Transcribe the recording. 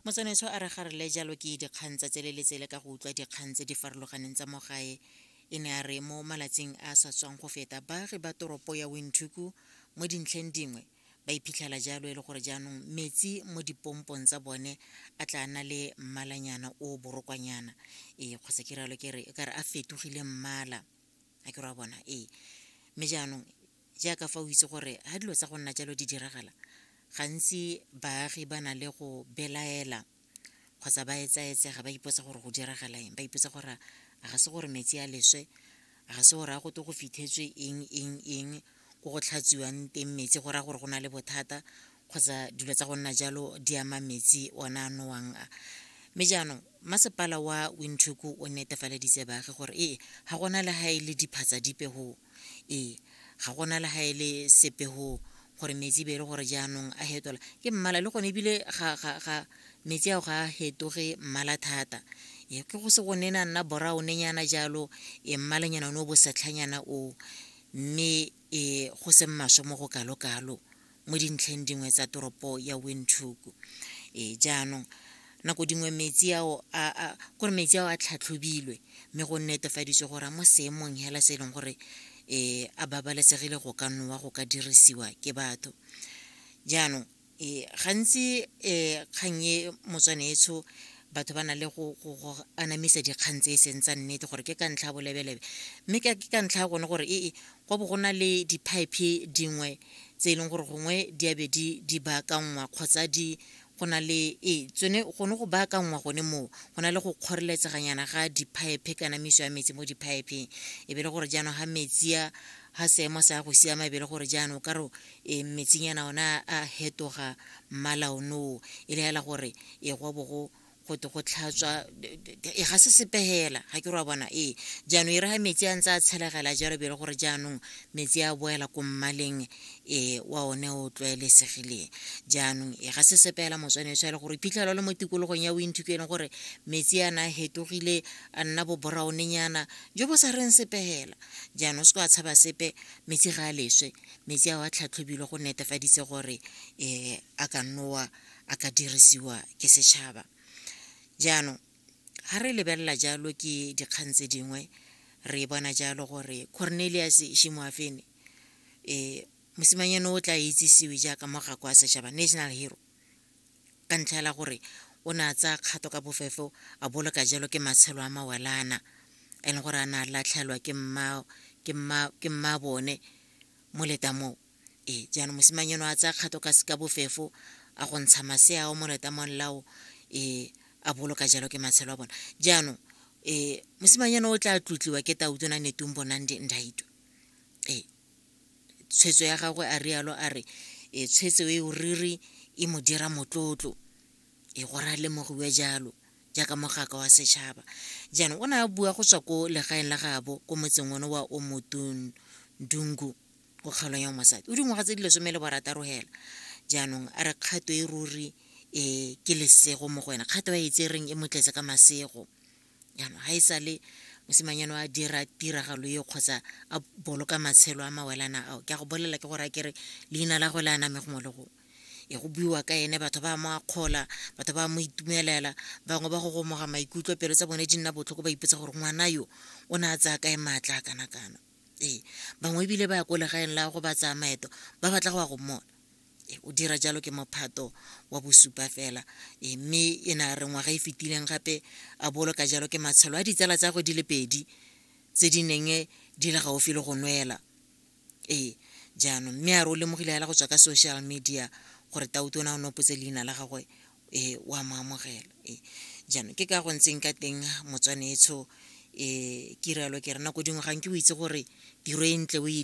motsanetso a re ga re le jalo ke dikgang tsa tsele le tsele ka go utlwa dikgang tse di farologaneng tsa mo gae e ne a re mo malatsing a sa tswang go feta baagi ba toropo ya winthuku mo dintlheng dingwe ba iphitlhela jalo e le gore jaanong metsi mo dipompong tsa bone a tla na le mmalanyana o borokwanyana ee kgotsa ke ralo ke re ka re a fetogile mmala a ke re wa bona ee mme jaanong jaaka fa o itse gore ga dilo tsa go nna jalo di diragala gantsi baagi ba na le go belaela kgotsa ba etsaetsega ba ipotsa gore go diragala eng ba ipotsa gore a ga se gore metsi a leswe a ga se gore a gote go fitlhetswe eng eng eng ko go tlhatsiwang teng metsi go raya gore go na le bothata kgotsa dilo tsa go nna jalo di ama metsi ona a nowang a mme jaanong masepala wa windhoek o netefaleditse baagi gore ee ga gona le ga e le diphatsa dipe go ee ga gona le ga e le sepe go gore metsi be e le gore jaanong a hetola ke mmala le gone ebile ga metsi ao ga a hetoge mmala thata e ke go se go ne na nna boraonenyana jalo e mmalanyana one o bosetlhanyana o mme e go se mmaswe mo go kalo-kalo mo dintlheng dingwe tsa toropo ya windhoek e jaanong nako dingwe metsi ao a kore metsi ao a tlhatlhobilwe mme go netefaditswe gore a mo seemong hela se e leng gore um a babalesegile go ka nowa go ka dirisiwa ke batho jaanong um gantsi um kgang e motswane etsho batho ba na le go anamisa dikgang tse e seng tsa nnete gore ke ka ntlha ya bolebelebe mme ke ka ntlha ya gone gore ee Go bo go na le diphaephe dingwe tse e leng gore gongwe di a be di di baakanngwa kgotsa di go na le ee tsone gone go baakanngwa gone moo go na le go kgoreletseganyana ga diphaephe kana miso ya metsi mo diphaepheng e be le gore jaanong ga metsi a ga seemo sa go siama e be le gore jaanong o ka re e metsinyana ona a hetoga mmala onoo e le hela gore e go bo go go te go tlhatswa e ga se sepe fela ga ke re wa bona ee jaanong e re ga metsi a ntse a tshelegela jalo bele gore jaanong metsi a boela ko mmaleng um wa one o tlwaelesegileng jaanong e ga se sepe fela motswanetso ya le gore phitlhelo le mo tikologong ya bointhuko e leng gore metsi a na a fetogile a nna boboraonenyana jo bo sa reng sepe fela jaanong se ko a tshaba sepe metsi ga a leswe metsi a wa tlhatlhobilwe go netefaditse gore um a ka nnowa a ka dirisiwa ke setšhaba jaanong ga re lebelela jalo ke dikgang tse dingwe re bona jalo gore cornelius shimoafene um eh, mosimanyane o tla itsisiwe jaaka mogako wa setšhaba national hero ka ntlha ela gore o ne a tsaya kgato ka bofefo a boloka jalo ke matshelo a mawelana e leng gore a ne a latlhelwa ke mma bone mo leta moo ee jaanong mosimanyeno a tsaya kgato ka seka bofefo a go ntsha masea ao mo letamong lao um a boloka jalo ke matshelo a bona jaanong um mosimanyeno o tla tlotliwa ke tautona netung bonang di ndaito ee tshwetso ya gagwe a rialo a re e tshwetso e o riri e mo dira motlotlo e go ra lemogiwe jalo jaaka mogaka wa setšhaba jaanong o ne a bua go tswa ko legaeng la gaabo ko motseng one wa o motundungu go kgaolwa ya mosadi o dingwaga tse di lesome le borataro hela jaanong a re kgato e ruri um ke lesego mo go wena kgato ya etse reng e motletse ka masego jaanong ga e sa le mosimanyano a dira tiragalo e kgotsa a boloka matshelo a mawelana ao ke a go bolelela ke gore a kere leina la go le aname gongwe le gongwe e go buiwa ka ene batho ba mo akgola batho ba mo itumelela bangwe ba go gomoga maikutlo pelo tsa bone di nna botlhoko ba ipotsa gore ngwana yo o ne a tsaya kae maatla a kana kana ee bangwe ebile ba ya ko legaeng la go ba tsaya maeto ba batla go ya go mmona ee o dira jalo ke mophato wa bosupa fela ee mme e ne a re ngwaga e fetileng gape a boloka jalo ke matshelo a ditsala tsa go di le pedi tse di neng di le gaufi le go nwela ee jaanong mme a re o lemogile fela go tswa ka social media gore tautona o ne o potse leina la gagwe e wa mo amogela e jaanong ke ka go ntseng ka teng motswanetsho e kirelo ke rena ko dingwe ga nke o itse gore tiro e ntle o e